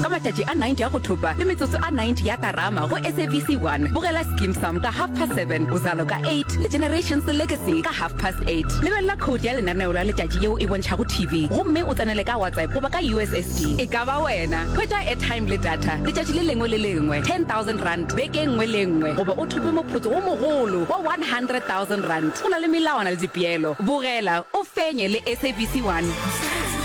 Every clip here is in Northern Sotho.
ka matšatši a 90 ya go thopa le metsotso a 90 ya karama go sabc 1 bogela skim sam ka half past 7 bozalo ka 8 le generations legacy ka half past 8 lebelela code ya lenaneo la letšatši yeo e bontšhago tv gomme o tsenele ka whatsapp goba ka ussd e ka ba wena hwetša airtime le data letšatši le lengwe le lengwe 10000 rand beke nngwe le nngwe goba o thope moputso wo mogolo wa 100000 rand o na le melawana le dipeelo bogela o fenye le sabc 1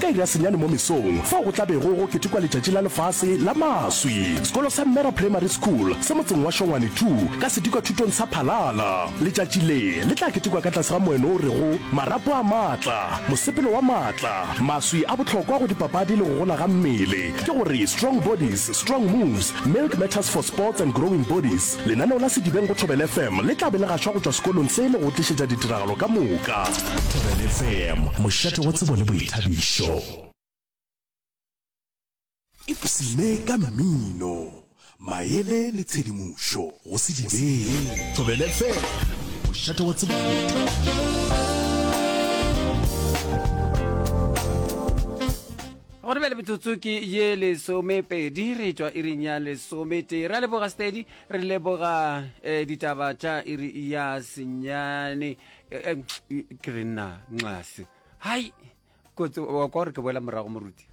Ka iri ya senyane mo mesong, fao go tla bego go ketekwa Letšatši la Lefase la Maswi, sekolo sa Mmera Primary School se motseng wa Shongwane Two ka sedikwathutong sa Phalala. Letšatši le, le tla ketekwa ka tlase ga moeno o rego Marapo a Maatla, Mosepelo wa Maatla. Maswi a bohlokwa go dipapadi le go gola ga mmele. Ke go re, Strong Bodies, Strong Moves, Milk Matters for Sports and Growing Bodies. Lenaneo la Sedibeng go Thobela FM le tla be le gašwa go tšwa sekolong se le go tlišetša ditiragalo ka moka. Thobela FM, mošate wa tsebo le boithabišo. Ipshine ka mmino, maele le tshedimošo go Sedibeng. Thobela FM, mošate wa tsebo le boithabišo. Go re bjale metsotso ke ye lesomepedi re tšwa iring ya lesometee. Ra leboga Steady, re leboga eh, ditaba tša iri ya senyane eh, eh, ke re nna nxase hai kotsi wa kwa gore ke boela morago moruti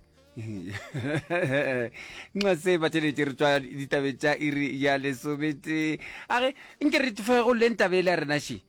nxa se bateletse re tswa ditabe tša iri ya lesometee age nke re tfegoleng tabe e le ya rena she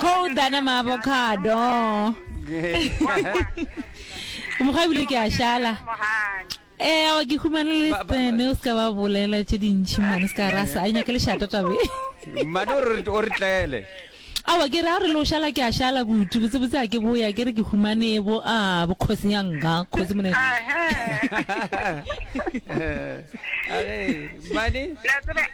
Cold than a avocado. Mokgwa ebile ke a šala. Eh, wa ke humane le tsene o ska ba bolela tše dintši mane ska rasa. A nyake le shata tabe. Mane o re o re tlele. Awa ke re a re lo shala ke a shala kutu botse botse a ke boya ke re ke humane bo a bo khosi ya nga khosi mone. Mane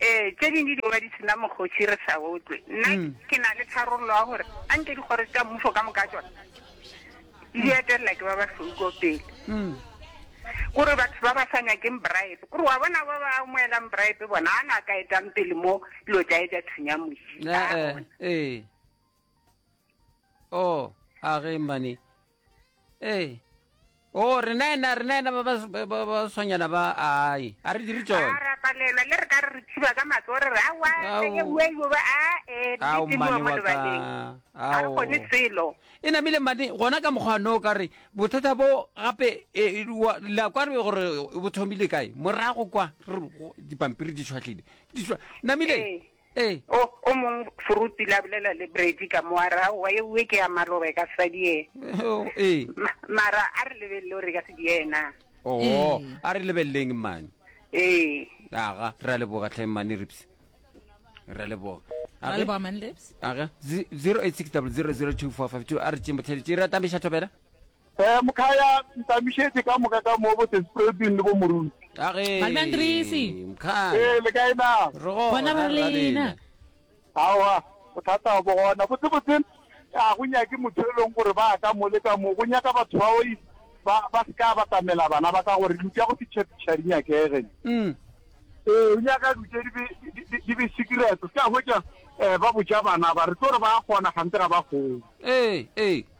Ee, tše dingwe di ba di sena mokgotši re sa otlwe. Nna mm. ke na le tharollo ya gore a nke dikgoro tša mmušo ka moka tsona di etelela ke ba ba hloko pele mm. kore batho ba ba sa nyakeng bribe kore wa bona ba ba amoelang bribe bona a na ka etang pele mo dilo tša e tša thunya mosi eh, eh, eh. o oh, a ge mane ee o rena ena rena ena ba tshwanyana ba ai a re dire tsone ra palelwa le re ka re re thiba ka matso re re awa e uwe e uwe a e di mo mo lebaleng a go ne selo e namile mane gona ka mokgwa no ka re bothata bo gape e, la kwa re gore bo thomile kae morago kwa dipampiri di tshwatlile namile ee. Ee. O, o mong foruti la bolela le Brady ka mo a ra, wa ye uwe ke ya maloba e ka sadi ye. O, ee. Ma, mara a re lebelele o re ka sedi yena. O, Ee. a re lebeleleng mmane. Ee. Aga, ra leboga tlhe mmane Rips. Ra leboga. Ra leboga man lips. Aga, zi- 086 000 2452 a re tšeng botlhale tše ra tambeša thobela. Ee, Mkhaya, ntamišetše ka moka ka mo bo Sespreuding le bo Moruti. Ka ge, Balbandrisi. Mkhaya. Ee, le kae na? Re gona, Gona ba re lena. Aowa, bothata bo gona. Botsebotse, ga go nyake motho yo e leng gore ba ka mo le ka mo. Go nyaka batho ba o ba, ba se ka batamela bana ba ka gore lutša go fitšhafitšha di nyakege. Umm. Ee, o nyaka lutše di be, di, di, di be secret. O se ka hwetša um ba botša bana ba, re tlo re ba a kgona kganthe ga ba kgone. Ee, ee.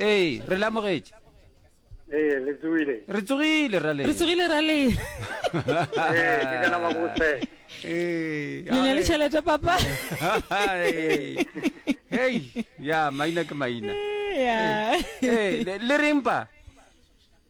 ee re lamogetše ee le tsogile re tsogile ra le re tsogile ra le ee ke kana ba botse ee le ne le tšhelete papa hey ya maina ke maina ya le reng pa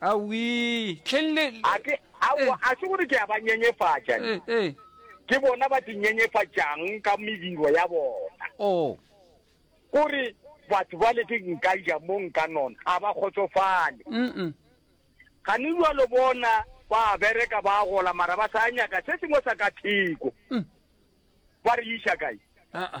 Awii, hleng le, A ke, aowa, eh, a se gore ke a ba nyenyefatša, ne. eh, eh. Ke bona ba di nyenyefatšang ka mediro ya bona. Oo. Ko re, Batho bale ke nka ja mo nka nona, a ba kgotsofale. Mm-mm. Gane bjalo bona ba a bereka, ba a gola, mara ba sa nyaka se sengwe sa ka theko. Mm. Ba re iša kae? A-a.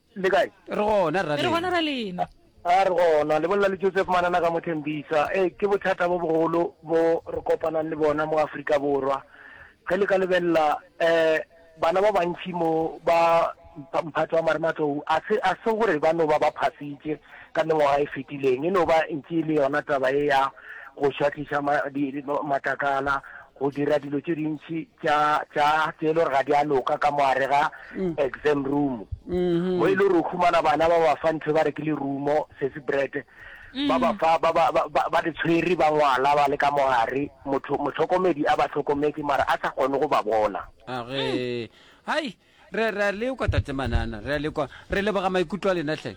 le kae re gona ra re gona ra lena a re gona lebolela le joseph manana ka mothembisa e ke bothata bo bogolo bo re kopanang le bona mo aforika borwa ge le ka lebelela um bana ba bantšhi mo ba mphatso wa marematlou a se a se gore ba no ba ba phasitše ka mengwaga e fetileng e no ba ntše e le yona taba e ya go šwatliša matlakala go dira dilo tše dintši tša tša tše e le gore ga di a loka ka moare ga mm. exam room mm-hmm. mo e le gore o khumana bana ba ba fa ntho ba re ke le rumo sesi bread mm. ba ba fa ba ba ba di tshwere ba ngwala ba le ka moare motho motlhokomedi a ba tlhokometse mara a sa kgone go ba bona a re hai Re, re a lekwa, Tate Manana, re a lekwa. Re leboga maikutlo a lena, hle.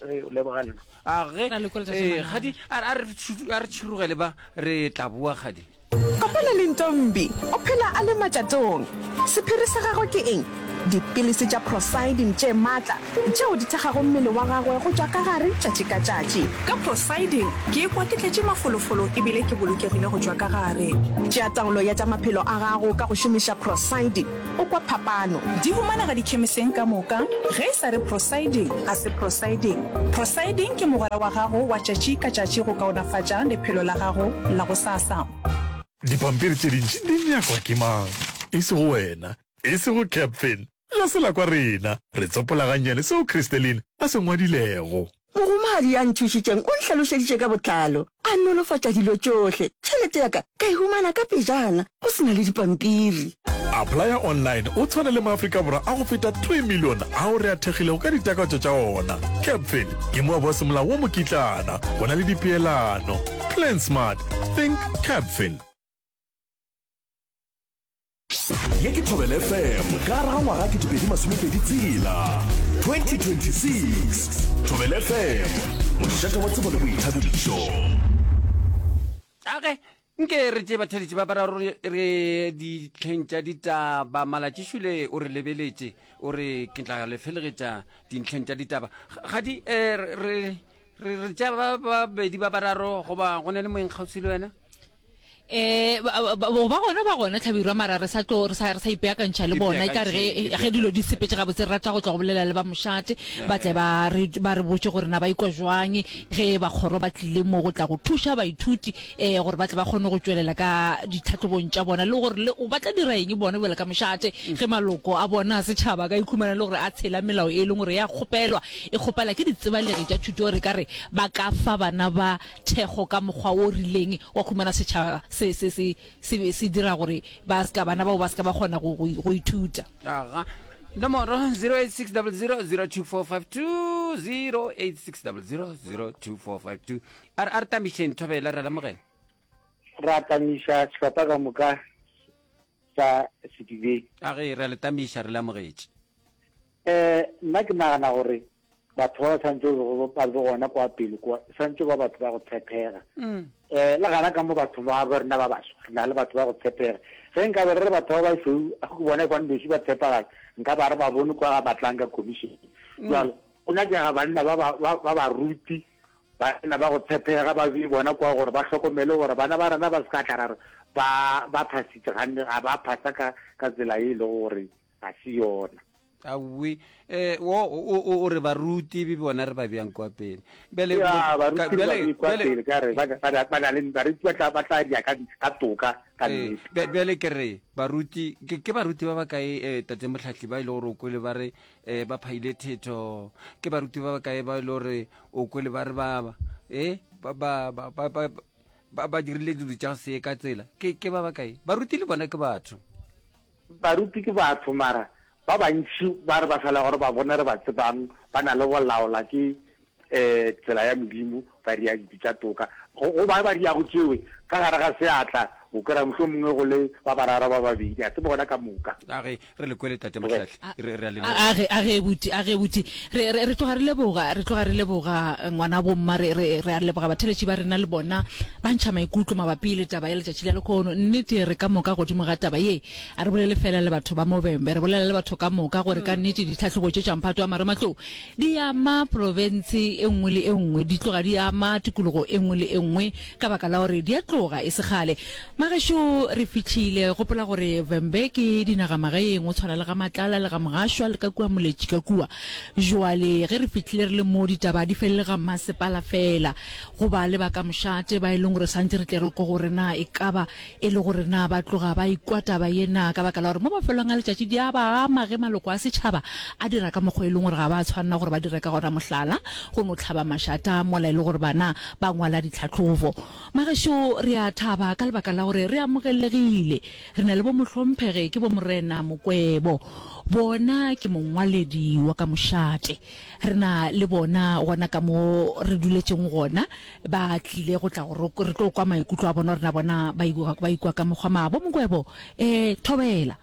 Re o leboga nna. A ge, Ra lekola, Tate eh, Manana. gadi, a, a re tšu- a re tšhurugele ba, re tla boa gadi. Kopana le Ntombi, o phela a le matšatong. Sephiri sa gagwe ke eng? Dipilisi tša prosidin tše matla, tšeo di thekgago mmele wa gagwe go tšwa ka gare tšatši ka tšatši. Ka prosidin, ke ikwa ke tletše mafolofolo e bile ke bolokegile go tšwa ka gare. Tšea taolo ya tša maphelo a gago ka go šomiša prosidin. O kwa phapano? Di humanega dikhemiseng ka moka, ge e sa re prosiding, ga se prosiding. Prosiding ke mogwera wa gago wa tšatši ka tšatši go kaonafatša lephelo la gago la gosasa. Dipampiri tše dintši di nyakwa ke mang? E sego wena. E sego Capfin. Ga se la kwa rena. Re tsopola gannyane seo Christeline a se ngwadilego. Mohumagadi ya nthušitšeng o nhlalošeditše ka botlalo, a nolofatša dilo tšohle. Tšhelete ya ka ka e humana ka pejana go se na le dipampiri. Applya Online o tshwana le Maafrika Borwa a go feta three million ao re a thekgilego ka ditakatso tša ona. Capfin ke moabo wa semolao wo mokitlana go na le dipeelano. Plan smart, think Capfin. ye ke thobel fm ka gare ga ngwaga ke dipedi masomepedi tsela 2026 thobel fm mošate wa tsebo le boithabišo age nke re tše batheletše ba bararo re ditlheng tša ditaba malatšišule o re lebeletše o re ke tla le felegetša dintlheng tša ditaba ga di um re tša babedi ba bararo goba go na le moengkgauswi le wena eh ba gona ba gona tlhabirwa mara re sa tlo re sa re sa ipeakantšha le bona e kare ge ge dilo di sepetse ga botse re rata go tla go bolela le ba mošate ba tle ba re ba re botse gore na ba ikwa jwang ge ba kgoro ba tlile mo go tla go thuša baithuti eh gore ba tle ba kgone go tšwelela ka ditlhatlhobong tša bona le gore le ba tla dira eng bona bjale ka mošate ge maloko a bona a setšhaba ka ikhumana le gore a tshela melao e leng gore ya kgopelwa e kgopela ke ditsebalegi tša thuto re ka re ba ka fa bana ba thekgo ka mokgwa wo rileng wa go humana setšhaba se se se se be se dira gore ba se ka bana bao ba se ka ba kgona go go go ithuta. Aga. Nomoro, 08600 02452, 08600 02452. A re a re tamišeng thobela re lamogela. ra tamiša sehlopha ka moka sa sedibeng A ge re a le tamiša re lamogetše. um nna ke nagana gore batho ba ba santse e lego ba le gona kwa pele kwa santse ba batho ba go tshepega um mm. eh, le gana ka mo batho ba bo rena ba baswa re na le batho ba go tshepega ge nka be re re batho ba basweu a go bona kwane boši ba tshepagatsa nka ba re ba bone kwa ga batlang ka commission mm. jalo o nyakega banna ba ba ruti banna ba go tshepega ba bee bona kwa gore ba tlhokomele gore bana ba rena ba se ka tla ra re ba phasitse ganne ga ba phasa ka tsela e e lego gore ga se yona. Aowi, eh, wo, o, o, o re baruti be bona re ba bjang kwa pele. Bjale, Ya, bo- baruti ka- ba bjale- be kwa bjale- pele ka re ba- ba- ba- ba na le- baruti ba tla- ba tla dira ka ka toka ka Eh, nnete. bja- bjale ke re baruti ke, ke baruti ba ba kae um tate motlhahli ba e le gore o kwele ba re um ba phaile thetho ke baruti ba ba kae ba e le gore o kwele ba re ba ba e ba ba ba ba ba ba- ba dirile dilo tša go se ye ka tsela ke ke ba ba kae baruti le bona ke batho Baruti ke batho mara ba bantši ba re ba sa le gore ba bone re ba tsebang ba na le bolaola ke um tsela ya Modimo ba ria ditsi tša toka go go ba ba riago tšewe ka gare ga seatla o kwera mohlomongwe go le ba bararo ba babedi a se bona ka moka. Age re le kwele tate Mahlatli re re a le A, a, a ge, a ge, abuti, a ge, abuti. Re, re, re tloga re leboga, re tloga re leboga ngwanabo mma, re, re, re a leboga batheletši ba rena le bona ba ntšha maikutlo mabapi le taba ya letšatši la lekhono. Nnete, re ka moka godimo ga taba ye, a re bolele feela le batho ba Mobembe, re bolela le batho ka moka gore ka nnete ditlhahlobo tše tša mphato wa marematlou di ama profense e nngwe le e nngwe, di tloga di ama tikologo e nngwe le e nngwe ka baka la gore di a tloga e se kgale. Magešo re fihlile. Gopola gore Vhembe ke dinagamagaeng, go tshwana le ga Matlala le ga Mogašwa le ka kua Moletši ka kua. Joale ge re fihlile re le mo, ditaba di felele ga mmasepala fela. Go ba le ba ka mošate ba e leng gore santse re tle re kwa gore na e ka ba e le gore na ba tloga ba e kwa taba ye na ka baka la gore mo mafelong a letšatši di a ba ama ge maloko a setšhaba a dira ka mokgwa e leng gore ga ba tshwanela gore ba dire ka gona, mohlala, go no hlaba mašata mola e le gore bana ba ngwala ditlhahlobo. Magašo, re a thaba ka lebaka la gore re amogelegile. Re na le bomohlomphege ke bomorena Mokwebo. Bona ke mongwaledi wa ka mošate. Re na le bona gona ka mo re duletšeng gona. Ba tlile go tla go re tlo kwa maikutlo a bona gore na bona ba ikwa ka mokgwa ma. Bo Mokwebo, ee, thobela.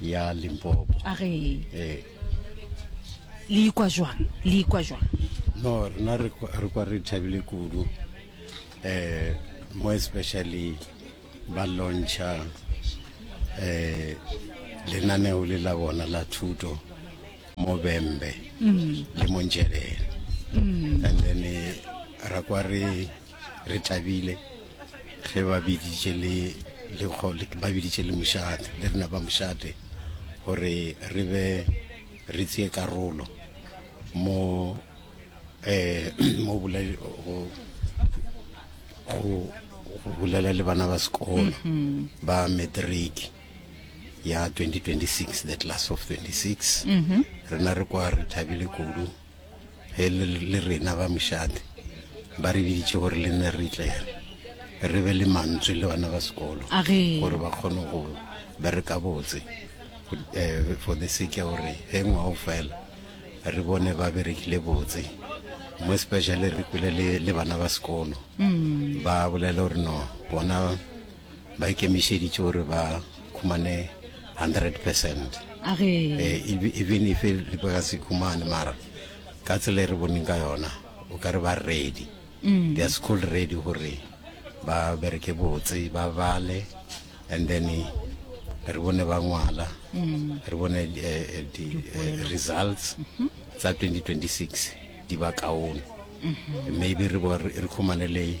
ya limpopo a re ee le ikwa jwang le ikwa jwang no rena re kwa re thabile kudu um more especially ba launcha um lenaneo le la bona la thuto mo bembe mm. le mo njelele mm. and then eh, ra kwa re re tabile ge ba biditše le lekgo ba biditše le mošate le rena ba mošate gore re be re tseye karolo mo um mo go bolela le bana ba sekolo mm-hmm. ba matric ya 2026 the class of 26 mm-hmm. rena re kwa re thabile kudu ge le, le rena ba mošate ba re biditše gore le nne re tle re be le mantswe le bana ba sekolo A re. gore ba kgone go bereka botse eh, for the sake ya gore ge ngwao fela re bone ba berekile botse mo especially re kwele le, le bana ba sekolo ba bolela gore no bona ba ikemišeditše gore ba khumane 100 percent eh, even if le ba ka se khumane mara ka tsela e re boneng ka yona o ka re ba ready mm. they are school ready gore ba bereke botse ba bale and then re bone ba ngwala mm. re bone eh, di-results eh, mm-hmm. tsa 2026 di ba kaone mm-hmm. maybe re khumane le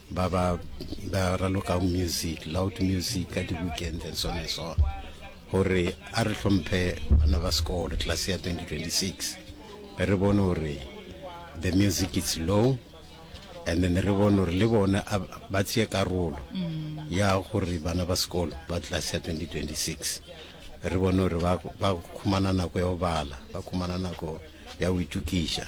ba ba ba ralokago music loud music ka di-weekend and so on and so on gore a re hlomphe bana ba sekolo class ya 2026 be re bone gore the music is low and then re bone gore le bone ba tseye karolo mm. ya gore bana ba sekolo ba class ya 2026 re bone gore ba khumana nako ya go bala ba khumana nako ya go itukiša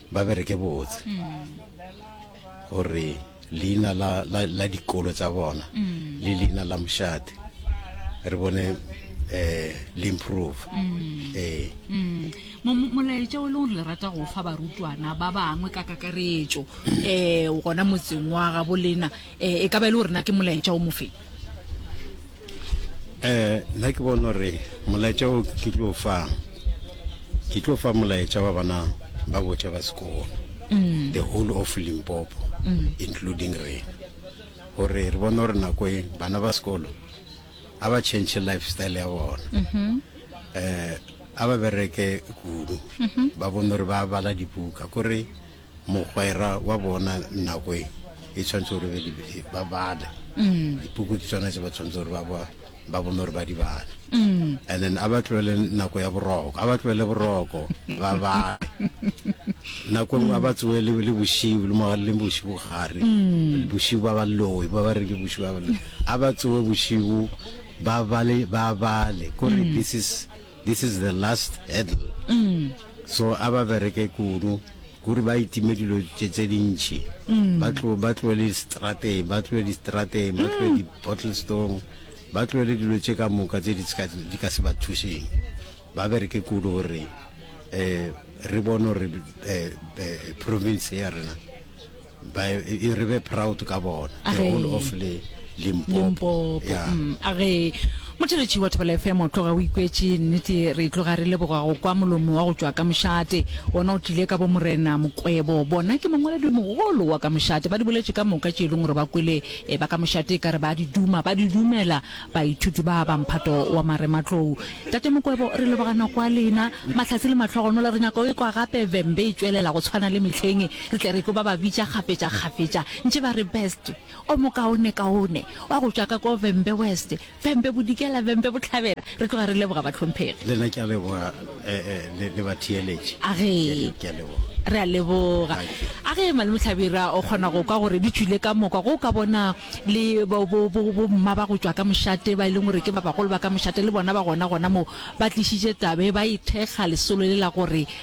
ba bereke botse gore leina la, la, la dikolo tsa bona mm. le leina la mošate re bone eh le improve mm. eh mm. molaetša o e leng gore le rata go fa barutwana ba bangwe ka kakaretšo um gona motseng wa gabolena um e ka ba e le gorena ke molaetša o mofeng eh nna ke bona gore molaetša o ke tlo fa ke tlo fa molaetša wa bana ba botša ba sekolo mm. the whole of limpopo mm. including rena gore re bone gore nako e bana ba sekolo a ba change lifestyle ya bona um a ba bereke kudu mm-hmm. ba bone gore ba bala dibuka kore Mogwera wa bona nako e e tshwanetse gore be di- ba bale Mm. dipuku ke tsona tse ba tshwanetse gore ba ba- ba bone gore ba di bale Mm. and then a ba tlogele nako ya boroko a ba tlogele boroko ba bale nako nngwe a ba tsoe le le bosiu le moga le bosiu gare Mm. bosiu ba ba loe ba ba re ke bosiu ba ba loe a ba tsoe bosiu ba bale ba bale kore Mm. this is This is the last hurdle so a ba bereke kudu kuri ba itime dilo tše tše dintši ba tlo ba tlo le strate ba tlo di strate ba tlo di bottle stone ba tlo le dilo tše ka moka tše di ska di ka se ba thušeng ba bereke kudu gore eh re bone gore eh, eh province ya rena ba e re be proud ka bona the whole of le limpopo a ge motheletši wa thobela fm o tloga o ikwetše nnete re tloga re leboga go kwa molomo wa go tšwa ka mošate ona o tlile ka bo morena mokwebo bona ke mongwaledi mogolo wa ka mošate ba di boletše ka moka tše e leng gore ba kwele e ba ka mošate ka re ba di duma ba di dumela baithuti ba ba mphato wa marematlou tate mokwebo re lebogana kwa lena mahlatse le matlhogonola re nyaka o e kwa gape vembe e tšwelela go tshwana le mehleng Re tle re tlo ba ba bitša kgafetšakgafetša ntše ba re Best, o mokaonekaone, wa go tšwa ka ko Vhembe West, Vhembe Bodikela, Vhembe Bohlabela. Re tloga re leboga bahlomphegi. Le nna ke a leboga le, le batheeletši. A ge. Ke a leboga. Re a leboga. Thank you. A ge Malome Hlabirwa o kgona go kwa gore di tšwile ka moka, go o ka bona le bo, bo, bo, bomma ba go tšwa ka mošate ba e leng gore ke ba bagolo ba ka mošate, le bona ba gona gona moo, ba tlišitše taba e, ba e thekga lesolo le la gore